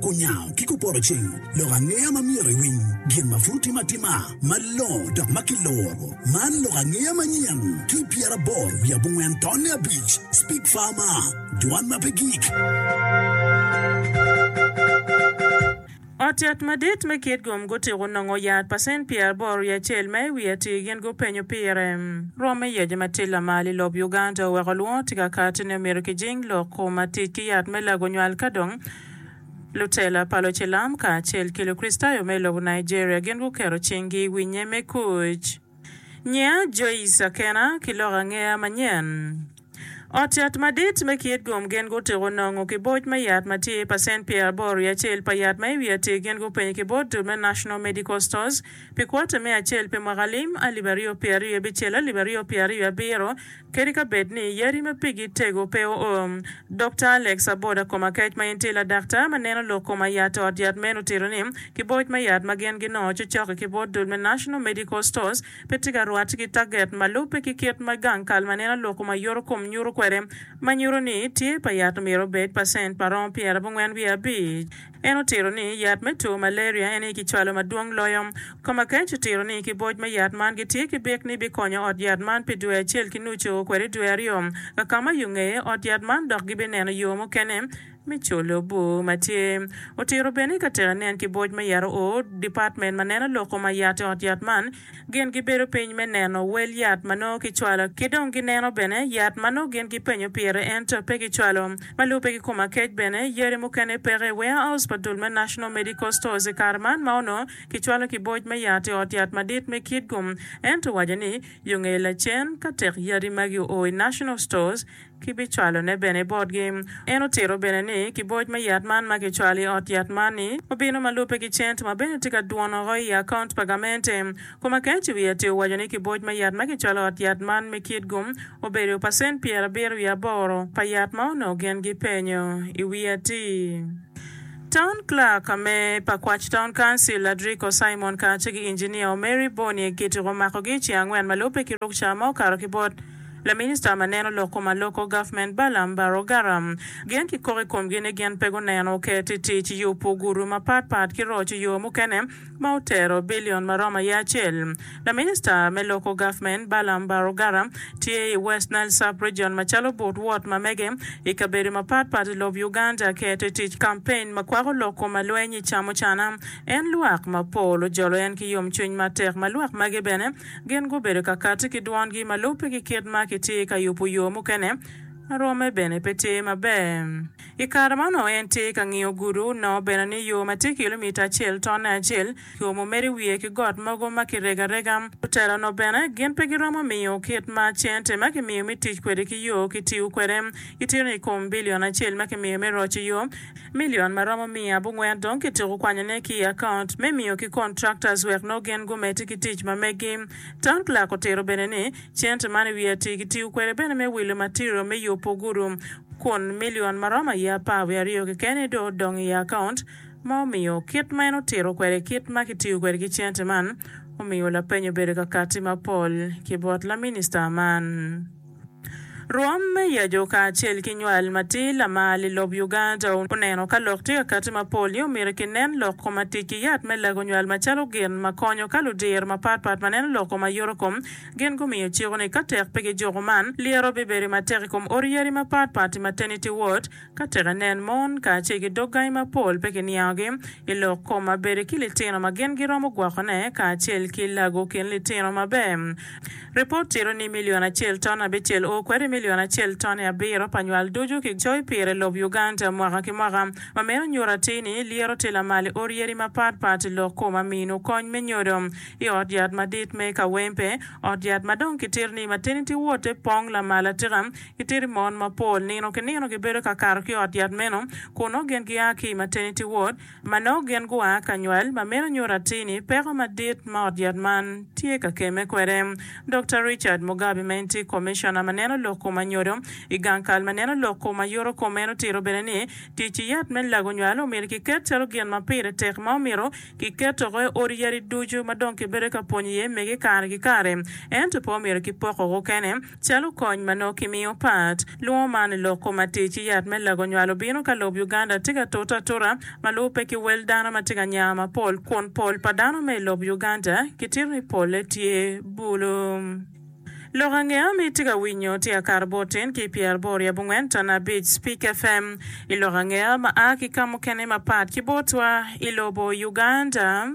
Kunyango ki kupotoceng lok angeya ma myero iwiny gin ma pud otime atima malongo dok ma kiloro. Man lok angeya manyen ki pyeraboro wiye abongwen tonne abic, Speak Farmer, Dwan ma pe gik. Ot yat madit me Kitgum gutiko nongo yat pa cent pyeraboro wiye acel ma i wiye atir gin gupenyo pire. Rwom me yec ma tye lamal i lob Uganda oweko lwongo tye ka kati ni omyero kijing lok ma tic ki yat me lago nywal ka dong lutela pa lucilam kacel ki Lukricitayo me lobo Nigeria gin guketo cinggi i winye me kuc. Nyia Joyce Akena ki lok angeya manyen. Ot yat madit me kit gum gin gutiko nongo ki boc me yat ma tye pacent pyeraboro i acel pa yat ma i wi atir gin gupenyo ki bot dul me National Medical Stores pi kwota me acel pi mwaka lim alip aryo pye aryo bicel alip aryo pye aryo abiro kadi ka bed ni yadi ma pigi tego pe oo. Dokta Alex Aboda Komakec ma en tye ladaktar ma neno lok koma i yat ot yat meno otito ni ki boc me yat ma gin ginongo cocok-ki ki bot dul me National Medical Stores pe tye ka rwatte ki taget ma lubbe ki kit ma gang kal ma nen aloko ma yoto kom nyuto kwede, ma nyuto ni tyer pa yat omyero obed pacent pa romo pyerabongwen wiye abic. En otito ni yat me two malaria en aye kicwalo madwong loyo. Komakech otito ni kiboc me yat man gitye ki bik ni bikonyo ot yat man pi dwe acel ki nucu kwede dwe aryo, kakama yo ngeye ot yat man dok gibineno yo mukene me colo bur ma tye. Otito bene i ka teka nen ki boc me yat oo, department ma neno lok kom ayat i ot yat man gin gi bedo piny me neno wel yat ma nongo ki cwalo ki dong gi neno bene yat ma nongo gin gi penyo pire ento pe ki cwalo. Ma lube ki kom akec bene yadi mukene peke i warehouse pa dul me National Medical Stores i kare man ma onongo ki cwalo ki boc me yat i ot yat madit me Kitgum ento owaco ni yo ngeye lacen ka tek yadi magi oo i National Stores kibicwalone bene botgi. En otito bene ni, Ki boc me yat man ma kicwalo i ot yat man-ni, obino ma lubbe ki cent ma bene tye ka dwono woko i akaunt pa gamente. Kom akec i wi atir owaco ni ki boc me yat ma kicwalo i ot yat man me kit-gu, obedo pacent pyerabiro wiye aboro pa yat ma onongo gin gipenyo i wi atir. Town Clerk me pa Kwach Town Council, Adriko Simon kacce ki Engineer Omeri Boniek gitiko makogi i ceng angwen ma lubbe ki ruk ca ma okato ki bot. Laminista ma neno lok kom aloko gavment Balaam Barrow-Garham gen ki kok i komgi ni gin pe guneno oket i tic yubu gudu mapat pat ki roco yo mukene ma otero billion ma romo aye acel. Laminista me loko gavment Balaam Barrow-Garham tye i West Nile Sub-Region macalo but wot ma mege i kabedo mapat pat i lob Uganda keto i tic campaign ma kwako lok kom alweny i camucana en lwak mapol ojolo en ki yomcwiny matek ma lwak magi bene Gin gubedo ka kati ki dwongi ma lubbe ki kit ma kitye ka yubo yo mukene ma romme bene pe tye maber. I kare man onongo en tye ka ngiyo gudo, nongo bene ni yo ma tye kilomita acel tonne acel ki omo mere i wiye ki got mogo ma kirego arega. Lutela onongo bene gin pe giromo miyo kit ma cente ma kimiyo me tic kwede ki yo kitiyo kwede. Gitito ni i kom bilion acel ma kimiyo me roco yo, Million ma romo miya abongwen dong kityeko kwanyo ne ki i account me miyo ki contractors wek noo gin gumeti ki tic ma megi. Town clerk otiro bene ni cente man i wi atir kitiyo kwede bene me wilo material me yubu gudu kun million ma romo aye apar wiye aryo kekeni dong odong i account ma omiyo kit ma en otiro kwede kit ma kitiyo kwede ki cente man omiyo lapenyo obedo kakati mapol ki bot la minister man. Rwom me yecu kacel ki nywal matir lamal i lob Uganda oneno ka lok tye ka kati mapol ni omyero kinen lok kom atic ki yat me lago nywal macalo gin makonyo ka ludir mapatpat maneno lok kom ayuto kom gin gumiyo ciko ni katek pe gijuko man lyero bibedi matek i kom ot yadi mapatpat i maternity ward Ka tek inen mon kacel ki dog gangi mapol pe kiniangogi i lok kom ma bede ki litino ma gin giromo gwokone kacel ki lago kin litino maber. Ripot tito ni milion acel ton abicel o kwede milion acel ton i abiro pa nywal ducu ki coyo pire i lob Uganda mwaka ki mwaka. Ma meno nyuto atir ni lyeto tye lamal i or yadi mapat pat i lok kom ma mino kony me nyodo. I ot yat madit me Kawempe, ot yat ma dong kitito ni maternity ward-te pong lamal atika, Kitidi mon mapol nino ki nino gibedo ka kato ki i ot yat meno, kun nongo gin gia ki i maternity ward ma nongo gin gua ka nywal, ma meno nyuto atir ni peko madit ma ot yat man tye ka kemme kwede. Dokta Richard Mugabi ma en tye Commissioner ma neno lok kom anyodo i gang kal ma neno lok kom ayuto kom en otito bene ni tic yat me lago nywal omyero kiket calo gin ma pire tek ma omyero kiket oko i odi yadi ducu ma dong kibedo ka pwonyo iye mege kare ki kare ento pe omyero kipoko oko kene. Calo kony ma nongo kimiyo pat, lwongo man loko matir ci yat me lago nywal obino ka lob Uganda tye ka tute atuta ma lubo pe ki wel dano ma tye ka nya mapol kun pol pa dano ma i lob Uganda kitito ni polle tye bulu. Lok angeya ma itye ka winyo tye akato botin ki pyeraboro i abongwen tana abic Spik FM i lok angeya ma a ki ka mukene mapat ki botwa i lobo Uganda.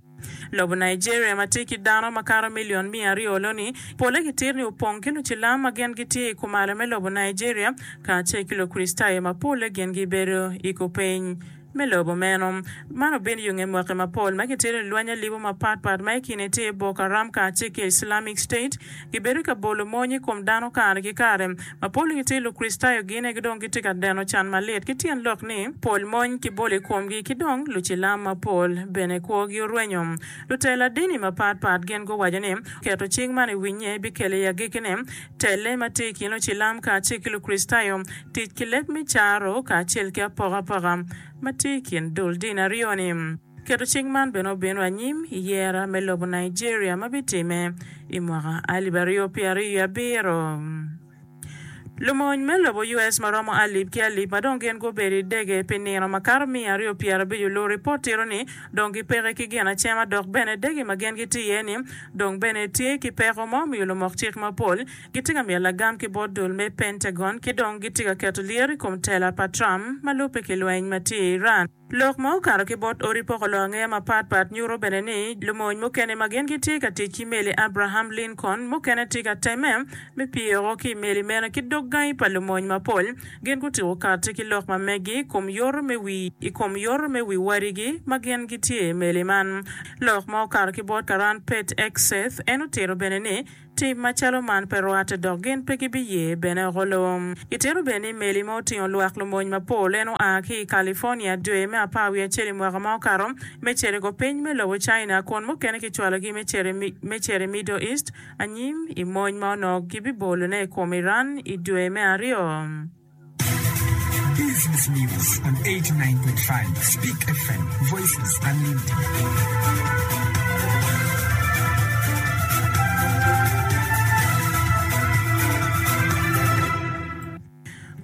Lobo Nigeria ma tye ki dano makato milion miya aryo loni, pole ki tir ni opong ki lucilam ma gin gitye i kumalo me lobo Nigeria kacel ki Lukricitayo ma pole gin gibedo i kupeny me lobo meno. Man obino yo nge mwaki mapol ma kitito i lweny alibu mapatpat ma i kine tye Boko Haram kacel ki Islamic State, gibedo ka bolo mony i kom dano kare ki kare. Mapol i ngut Lukricitayo gine ki dong gitye ka deno can malit ki tyen lok ni pol mony kibolo i komgi ki dong lucilam mapol bene kwogi orwenyo. Lutela dini mapat pat gin guwaco ni keto cik man i winnye bikelo i agekkine telle ma tye i kin lucilam kacel ki Lukricitayo, tic ki leb me caro kacel ki apokapoka ma tye i kin dul dini aryo ni. Keto cik man bene obino anyim i yera me lobo Nigeria ma bitimme i mwaka alip aryo pye aryo i abiro. Lumony me lobo US ma romo alip ki alip ma dong gin gubedo i dege pi nino makato miya aryo pye arabic olu ripot tito ni dong gipeke ki gin acema dok bene dege ma gin gitye iye ni dong bene tye ki peko ma omiyo lumok cik mapol gitye ka miyo lagam ki bot dul me Pentagon ki dong gitye ka keto lyeto i kom tela pa Trump ma lubbe ki lweny ma tye i Iran. Lok ma okato ki bot odi poko longe mapat pat nyuto bene ni lumony mukene ma gin gitye ka tic ki meli Abraham Lincoln mukene tye ka temme me pye woko ki i meli meno ki dog gangi pa lumony mapol. Gin gutyeko kati ki lok ma meggi i kom yoto me wi i kom yoto me wi wadigi ma gin gitye i meli man. Lok ma okato ki bot karan Pete Hegseth en otito bene ni, Tim macalo man pe rwatte dok gin pe gibiye bene oko lom. Itito bene ni meli ma otingo lwak lumony mapol en oa ki i California dwe me apar wiye acel i mwaka ma okato me cito i kor piny me lobo China kun mukene kicwalogi me cito me cito i Middle East anyim i mony ma onongo gibibolone i kom Iran i dwe me aryo.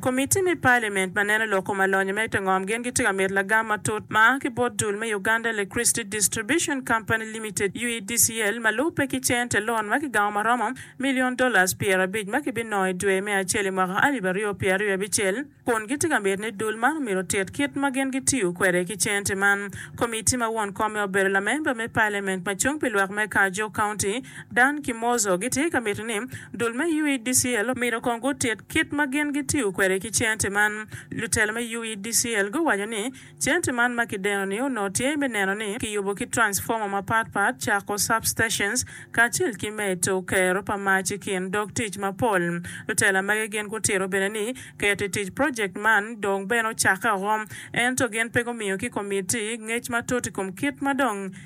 Komitti me Palimint ma neno loko ma lonyo me te ngom gin gitye ka mito lagam matut ma a ki bot dul me Uganda Electricity Distribution Company Limited, UEDCL, ma lubbe ki cente, lon ma ki gamo ma romo milion dolas pyerabic ma kibinongo i dwe me acel i mwaka alip aryo pyera ryo abicel, kun gitye ka miti ni dul man omyero otit kit ma gin gitiyo kwede ki cente man. Komitti ma won komme obedo lamemba me Pailament ma cung pi lwak me Kajo County, Dan Kimozo gitye ka miti ni dul me UEDCL omyero kong gutit kit ma gin gitiyo kwede ki cente man. Lutelo me UEDCL guwaco ni, Cente man ma kideno ni onongo tye me neno ni kiyubo ki transformer mapat pat, cako substations, kacel ki medo kero pa mac i kin dog tic mapol. Lutela magi gin gutito bene ni keto i tic project man dong bene ocakke oko, ento gin pe gumiyo ki komitti ngec matut i kom kit ma dong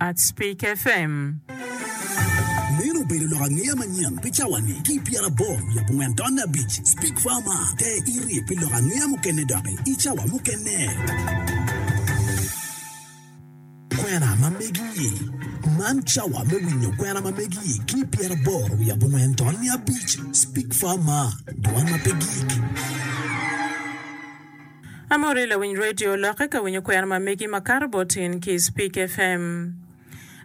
at Speak FM. Meno obedo lok angeya manyen pi cawani ki i pyerabor wiye abongwen taun abic. Speak Far Mar, Te iri pi lok angeya mukene doki i cawa mukene. Kwena ma megi-i, Man cawa me winyo kwena ma megi-i ki i pyerabor wiye abongwen taun abic. Speak Far Mar, Dwan ma pe gik. Amori lawiny radio lokke ka winyo kwena ma megi ma kato bot in ki Speak FM.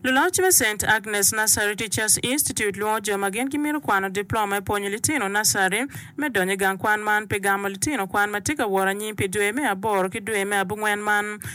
Luloc me Saint Agnes Nursery Teachers Institute lwongo jo ma gin gimito kwano diploma i pwonyo litino nursery me donyo i gang kwan man pi gamo litino kwan ma tye ka wot anyim pi dwe me aboro ki dwe me abungwen man.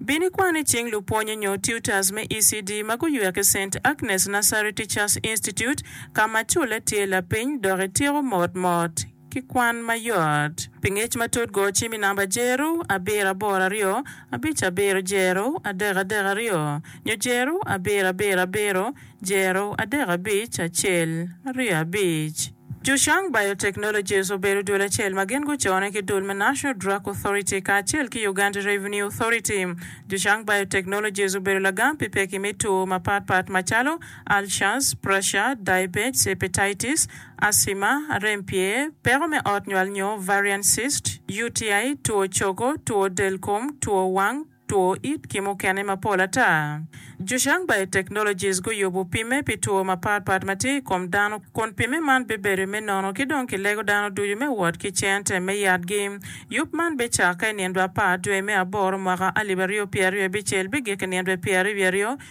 Bin ikwan i cing lupwonye nyo tutors me ECD ma guywer ki Saint Agnes Nursery Teachers Institute ka ma culle tye lapiny dok ityeko mot mot ki kwan mayot. Pi ngec matut go cim i namba Jeru abiro aboro aryo abic abiro Jeru adek adek aryo nyo Jeru abiro abiro abiro Jeru adek abic acel aryo abic. Zhushang Biotechnologies obedo dul acel ma gin gucone ki dul me National Drug Authority kacel ki Uganda Revenue Authority. Zhushang Biotechnologies obedo lagam pi pekki me two mapat pat macalo, ulcers, pressure, diabetes, hepatitis, asthma, rem pye, peko me ot nywal nyo varian cyst, UTI, two cogo, two del kom, two wang, two it ki mukene mapol ata. Zhushang Biotechnologies guyubo pimme pi two mapat pat ma tye i kom dano kun pimme man bibedo me nono ki dong kilego dano ducu me wot ki cente me yatgi. Yub man bicakke i nindwa apar dwe me aboro mwaka alip aryo pyeraryo abicel bigik i nindwa pyeraryo wiye aryo.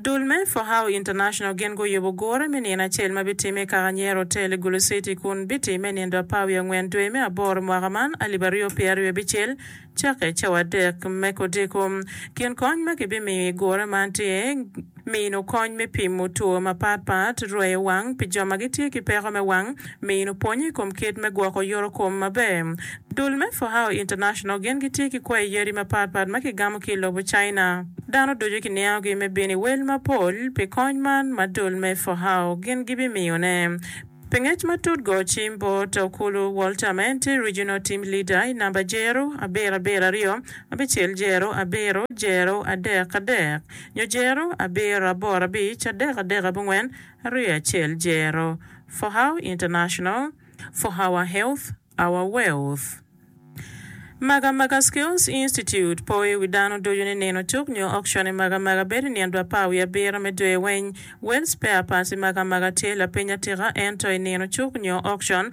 Dul me Fohau International gin guyubo gure me nino acel ma bitimme i Kakanyero Hotel i Gulu City kun bitimme i nindo apar wiye angwen dwe me aboro mwaka man alip aryo pye aryo bicel cakke cawa adek me kodiko. Kin kony ma kibimiyo i gure man tye mino kony me pimo two mapat pat, rweyo wang pi jo ma gitye ki peko me wang, Mino pwony i kom kit me gwoko yorokom maber. Dul me Fohao International gin gitye ki kwayi yadi mapatpat ma kigamo ki i lobo China. Dano ducu kiniangogi me bino i wel mapol pi kony man ma dul me Fohao gin gibimiyone. Pi ngec matut go cim bot Okulu Walter ma en tye Regional Team Leader i namba Jero abiro abiro aryo abicel Jero abiro Jero adek adek nyo Jero abiro aboro abic adek adek abongwen. Rye acel jero, For How International, For Our Health, Our Wealth. Magamaga Skills Institute po i wi dano ducu ni nino cuk nyo auction i Magamaga bedo i nino dwe apar wiye abiro me dwe weng. Well Spare Parts i Magamaga tye lapiny atika ento i nino cuk nyo auction,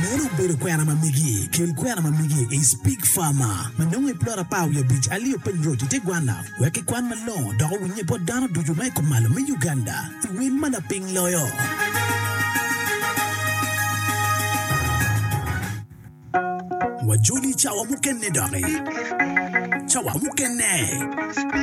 Meno obedo kwena ma migi kin kwena ma migi i Speke Farmer ma nongo i plot apar wiye abic alio Piny Road i te gwanna wek kikwan malongo dok owinnye bot dano ducu ma i kumalo me Uganda i wil ma lapiny loyo. Wajoli i cawa mukene doki. Cawa mukene.